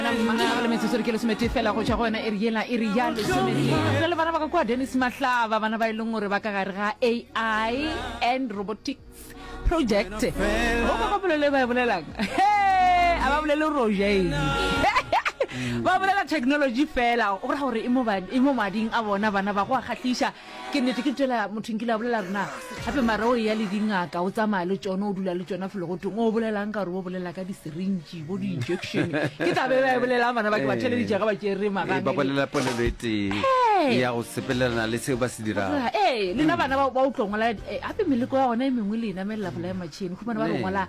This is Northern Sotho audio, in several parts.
le metsotso re ke lesomete fela go tšwa go yona e re yela e re ya lesomete le bana ba ka kwa dennis mahlaba bana ba e leng gore ba ka gare ga ai and robotics project go ba ba bolele ba e bolelang a ba bolele rojae ba bolela technology fela o ra gore e mo mading a bona bana ba go a kgatlhiša ke nnete ke tšela motho nkile a bolela rena gape mara o eya le dingaka o tsamaya le tsone o dula le tsone felo go teng o bolelang ka gore o bolela ka di-syringe bo di-injection ke tla be ba e bolelang bana ba ke ba theleditša ga ba tšere Ee, ba magang bolela polelo e tee Ee. ya go sepelelana le seo ba se dirago Ra, ee lena bana ba ba o tlo ngola eh, gape meleko ya gona e mengwe le e namelela bolae matšhini humane ba re Ee. ngola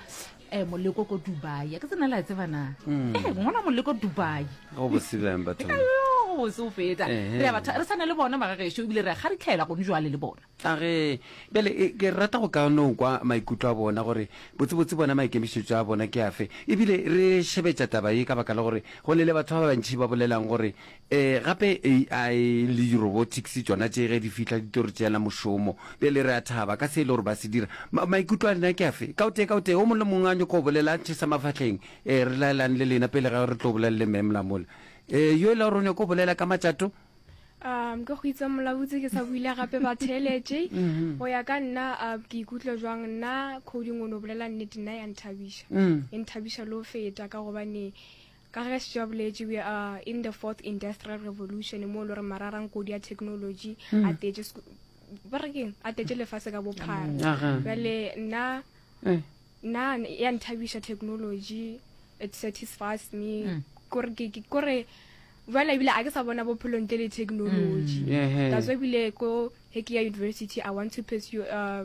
eh moleko ko dubai a ke tsena le a tseba na Mm. eh ngwana moleko dubai go bosibeng batho Ayo, se o feta Ehe. re a batha- re tshwane le bona magagešo ebile re a kgaritlhela gone jwale le bona a ge bjale e, ke rata go ka no kwa maikutlo a bona gore botsebotse bona maikemišetšo a bona ke afe ebile re šebetša taba ye ka baka la gore go ne le batho ba bantšhi ba bolelang gore Ee, gape AI le di-robotics tšona tše ge di fihla di tlo re tšeela mošomo. Bjale re a thaba ka se e le gore ba se dira. Ma, maikutlo a lena ke afe? Ka o tee, ka o tee, o mong le mong a nyoko go bolela, a tšhesa mafahleng. Ee, re laelane le lena pele ga re tlo bolela le Ma'am la mola. Ee, yo e le gore o nyoko go bolela ka matšato? Um, ka go itse Molabotse ke sa buile gape ba theeletše. Go ya ka nna, um, ke ikutlwa jwang? Nna, Coding o no bolela nnete, nna ya nthabiša. E nthabiša le go feta ka gobane, Ka ge Setsho a boletše, we are in the fourth industrial revolution mo e le gore mararang kodi ya technology hmm. a tetse ba re keng a tetse lefase ka bophara jale nna eh. nna ya nthabisa technology it satisfies me hmm. kore jale ebile a ke sa bona bophelo ntle le technology hmm. that's why ebile ko heke ya university i want to pursue uh,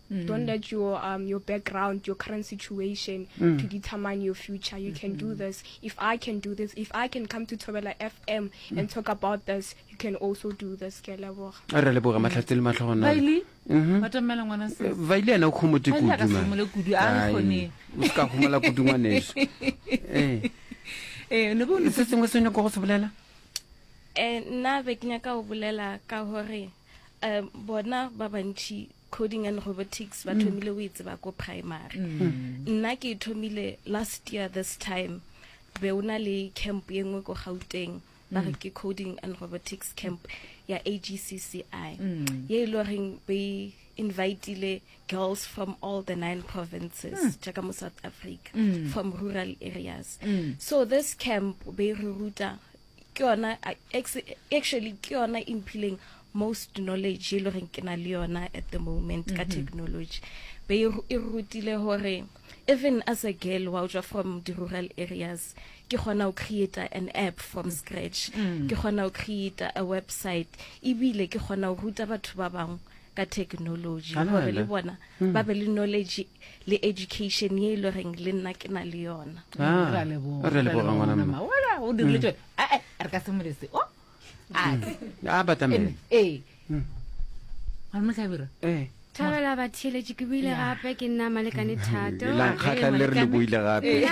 Mm. Don't let your um, your background, your current situation mm. to determine your future. You can do mm. this. If I can do this, if I can come to Tobela FM mm. and talk about this, you can also do this. Ke leboga. A re leboga matlhatse le matlhogo na. Baili. Mhm. Batamela ngwana se. Eh, Baili ana o khomotse kudu. Ka simole kudu a re khone. O ska khomela kudu ngwaneso. Eh. Eh, ne bo ne se sengwe se ne go go se bolela? Eh, nna be ke nyaka go bolela ka gore um bona ba bantši Coding and robotics ba thomile o e tseba ko primary. Nna ke e thomile last year this time be o na le camp e nngwe ko Gauteng ba re ke coding and robotics camp ya AGCCI ye e le goreng be e invitile girls from all the nine provinces jaaka mo South Africa from rural areas. So this camp be e re ruta ke yona actually ke yona e mphileng most knowledge e le goreng ke na le yona at the moment ka mhm. technology be e, e rutile gore even as a girl wa tswa from the rural areas ke gona o create an app from mm. scratch mm. ke gona o create a website ebile ke gona o ruta batho ba bangwe ka technology gore le bona hmm. ba be le knowledge le education ye e le goreng le nna ke na le yona ah, o dirile tsone hmm. eh, eh, re ka se molese o oh, a hmm. batamele ee ga mo tlhabira ee thabela batheletše ke buile gape ke nna malekane thatolankgatlha le re le buile gape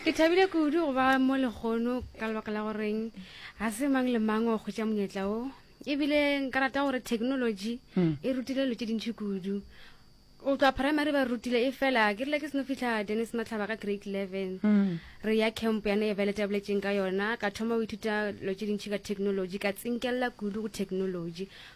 ke thabile kudu go ba mo legono ka lebaka la goreng ga se mang le mang o kgwetša monyetla o ebile nka rata gore technology hmm. e rutile lo tse dintšhi kudu o tswa primary ba rutile e fela ke rile ke seno fitlha dennis matlhaba ka grade eleven hmm. re ya camp yane e bele tabletšeng ka yona ka thoma o ithuta lo tse dintšhi ka technology ka tsinkelela kudu go technology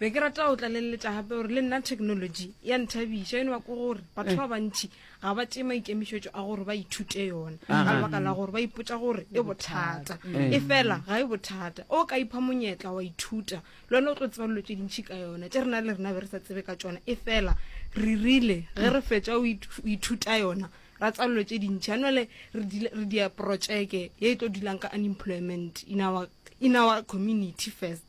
be ke rata go tlaleletša gape gore le nna technology ya nthabiša eno bako gore batho ba bantšhi ga ba tee maikemišetšo a gore ba ithute yona ka lebaka la gore ba ipotsa gore e bothata e fela ga e bothata o ka ipha monyetla wa ithuta le one o tlo tseba dilo tse dintšhi ka yona tse rena le rena be re sa tsebe ka tsona e fela re rile ge re fetsa o ithuta yona ra tsa dilo tse dintšhi a nole re dia projeke ye e tlo dulang ka unemployment in our community first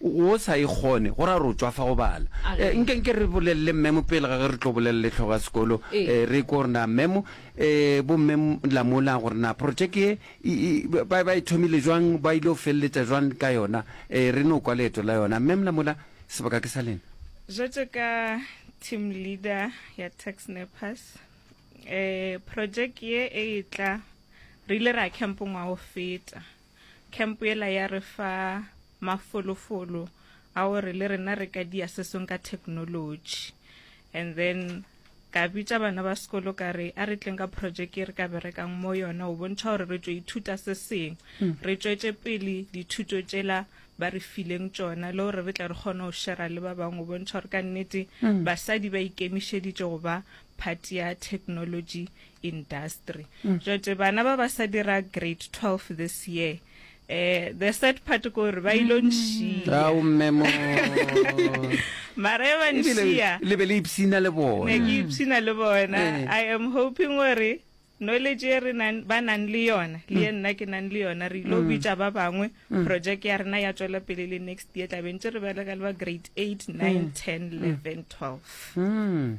O sa e kgone, go ra gore o tšwa fa go bala. Ee, nke, nke re bolelele mmemo pele ga ge re tlo bolelele hlogo ya sekolo. Ee, re ikwe gore na mmemo, ee, bomme la mola, gore na projeke ye e, e, ba, ba e thomile jwang, ba ile go feleletša jwang ka yona. Ee, re no kwa leeto la yona. Mmem la mola, sebaka ke sa lena. Bjatšo ka team leader ya Tax Nappers, ee, projeke ye e etla, re ile ra camp ngwaga o feta. Camp yela ya re fa mafolofolo a gore le rena re ka dia se sengwe ka technology. And then ka bitša bana ba sekolo ka re a re tleng ka project e re ka berekang mo yona o bontšha gore re tšo ithuta se sengwe hmm. re tšwetše pele dithuto tšela ba re fileng tsona le gore re tle re kgone go shera le ba bangwe o bontšha gore ka nnete mm. basadi ba ikemišeditše go ba phati ya technology industry mm. jote bana ba ba sa dira grade 12 this year eh the sad part ko re ba ilo mm. nshia o mmemo mara e ba nshia le be le ipsina le bona ne ke ipsina le bona eh. i am hoping gore knowledge e re ba nang le yona le ye mm. nna ke nang le yona re ilo mm. bitsa ba bangwe project ya rena ya tswela pele le next year tlabentse re bereka le ba grade 8 9 10 11 12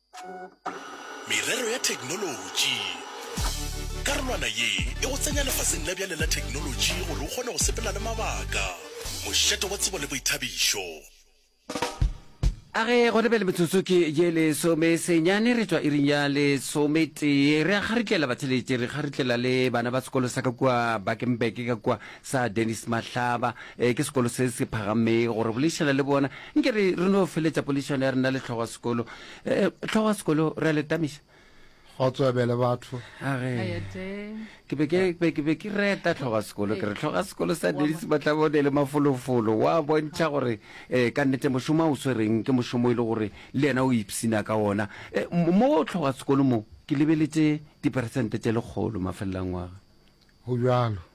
Merero ya Theknolotši Karolwana ye e go tsenya lefaseng la bjale la theknolotši gore o kgone go sepela le mabaka. Mošate wa tsebo le boithabišo. A ge gona bjale metsotso ke ye lesome senyane re tšwa iring ya lesometee. Re a kgaritlela batheletše, re kgaritlela le bana ba sekolo sa ka kua Bakenberg ka kua. sa Dennis Mahlaba eh, ke sekolo se se phagamego gore bolešana le bona nke re re no feletša polešano ya rena le tlhogo ya sekolo Eh, eh, tlhogo ya sekolo re a le tamiša go tswebele batho Age. Ayate. ke be ke be- ke be ke reta tlhoga sekolo ke re tlhoga sekolo sa denise matlabone le mafolofolo wa bontšha gore um ka nnete mošomo a o swereng ke mošomo e le gore le yena o ipsina ka ona Eh, mo mo tlhoga sekolo mo ke lebeletse diperesente tše lekgolo mafelelangwaga go bjalo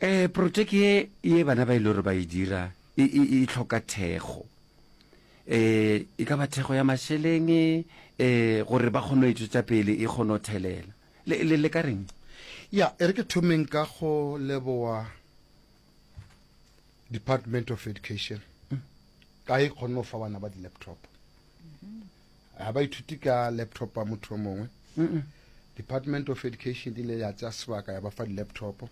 Ee, protšeke ye, ye bana ba e le gore ba e dira e, e, e hloka thekgo. E, e ka ba thekgo ya mašeleng e, gore ba kgone go e tšwetša pele e kgone go thelela. Le, le, le ka reng? Ya, e re ke thomeng ka go leboa Department of Education ka e kgonne go fa bana ba di-laptop. ga ba ithuti ka laptop ya motho o mongwe department of education di ile ya tsaya sebaka ya ba fa di-laptop